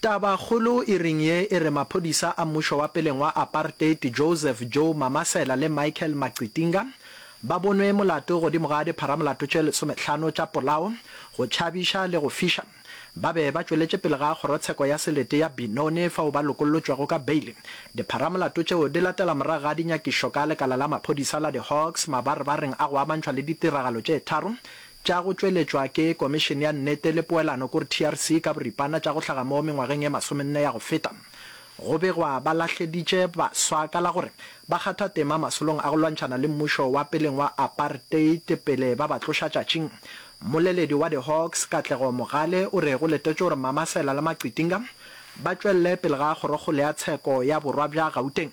Tabakgolo e reng ye e re maphodisa a mmušo wa peleng wa apartheid Joseph Joe Mamasela le Michael Maqitinga ba bonwe molato godimo ga dipharamolato tše lesometlhano tša polao, go tšhabiša le go fiša. Ba be ba tšweletše pele ga kgorotsheko ya selete ya Benoni fao ba lokollotšwego ka beile. Dipharamolato tšeo di latela morago ga dinyakišo ka lekala la maphodisa la di Hawks mabarebareng a go amantšhwa le ditiragalo tše tharo tša go tšweletšwa ke Komišene ya Nnete le Poelano, kore TRC, ka boripana tša go hlaga mo mengwageng e masomenne ya go feta. Go begwa ba lahleditše baswa ka la gore ba kgatha tema masolong a go lwantšhana le mmušo wa peleng wa apartheid pele ba ba tloša tšatšing. Mmoleledi wa di-Hawks, Katlego Mogale, o re go letetšwe gore Mamasela le Maqitinga ba tšwelele pele ga kgorokgolo ya tsheko ya borwa bja Gauteng.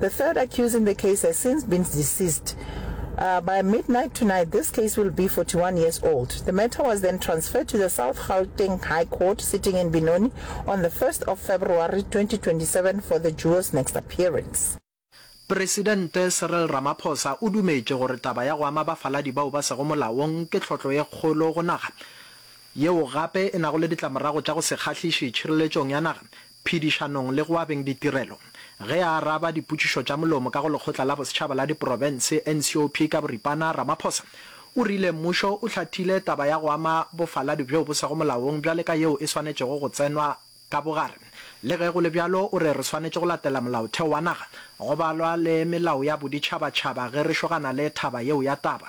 The third accused in the case has since been deceased. Uh, by midnight tonight, this case will be 41 years old. The matter was then transferred to the South Gauteng High Court sitting in Benoni on the 1st of February 2027 for the duo's next appearance. Presidente Cyril Ramaphosa o dumetše gore taba ya go ama bafaladi bao ba sego molaong ke tlhotlo ye kgolo go naga, yeo gape e nago le ditlamorago tša go se kgahliše tšhireletšong ya naga, phedišanong le go abeng ditirelo. Ge a araba dipotšišo tša molomo ka go Lekgotla la Bosetšhaba la Diprofense, NCOP, ka boripana, Ramaphosa o rile mmušo o hlathile taba ya go ama bofaladi bjo bo sego molaong bjale ka yeo e swanetšego go tsenwa ka bogare. Le ge go le bjalo, o re re swanetše go latela molaotheo wa naga, go balwa le melao ya boditšhabatšhaba ge re šogana le thaba yeo ya taba.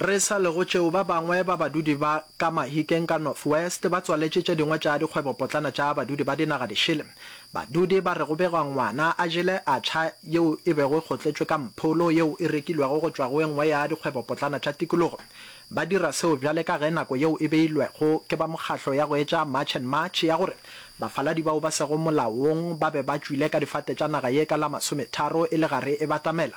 Re sa le go tšeo, ba bangwe ba badudi ba ka Mahikeng ka North West ba tswaletše tše dingwe tša dikgwebopotlana tša badudi ba dinaga di šele. Badudi ba re go begwa ngwana a jele acha yeo e bego e kgotletšwe ka mpholo yeo e rekilwego go tšwa go e nngwe ya dikgwebopotlana tša tikologo. Ba dira seo bjale ka ge nako yeo e beilwego ke ba mokgatlo ya go etša March and March ya gore bafaladi bao ba sego molaong ba be ba tšwile ka difate tša naga ye ka la masometharo e le gare e batamela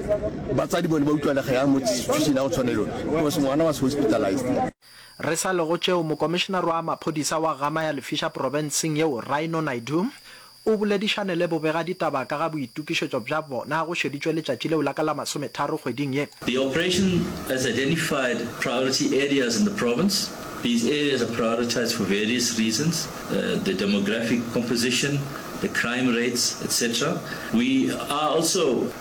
Batsadi bone ba utlwa lega ya mo institution ya go tshwana le yone because ngwana was hospitalized. Re sa le go tšeo, Mokomišenare wa Maphodisa wa Gama ya Lefiša Profenseng yeo, Rhino Naidoo, o boledišane le bobegaditaba ka ga boitokišetšo bja bona go šeditšwe letšatši leo la ka la masometharo kgweding ye. The operation has identified priority areas in the province. These areas are prioritised for various reasons, the demographic composition, the crime rates, etc. We are also.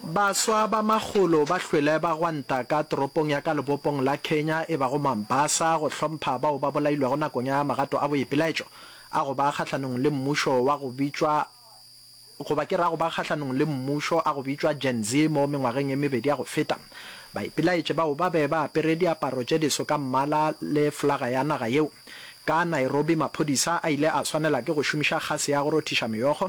Baswa ba makgolo ba hlwele ba gwanta ka toropong ya ka lebopong la Kenya e bago Mombasa go hlompha bao ba bolailwego nakong ya magato a boipelaetšo a go ba kgahlanong le mmušo wa go bitšwa goba ke re a go ba kgahlanong le mmušo a go bitšwa Gen Z mo mengwageng e mebedi ya go feta. Baipelaetše bao ba be ba apere diaparo tše diso ka mmala le flaga ya naga yeo. Ka Nairobi maphodisa a ile a swanela ke go šomiša kgase ya go rothiša meokgo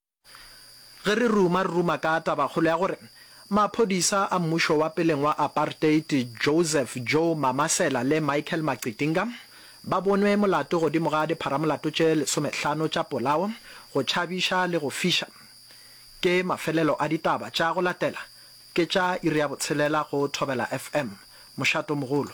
Ge re ruma, re ruma ka tabakgolo ya gore maphodisa a mmušo wa peleng wa apartheid Joseph Joe Mamasela le Michael Maqitinga ba bonwe molato godimo ga dipharamolato tše lesomehlano tša polao, go tšhabiša le go fiša. Ke mafelelo a ditaba tša go latela, ke tša iri ya botshelela go Thobela FM. Mošato mogolo.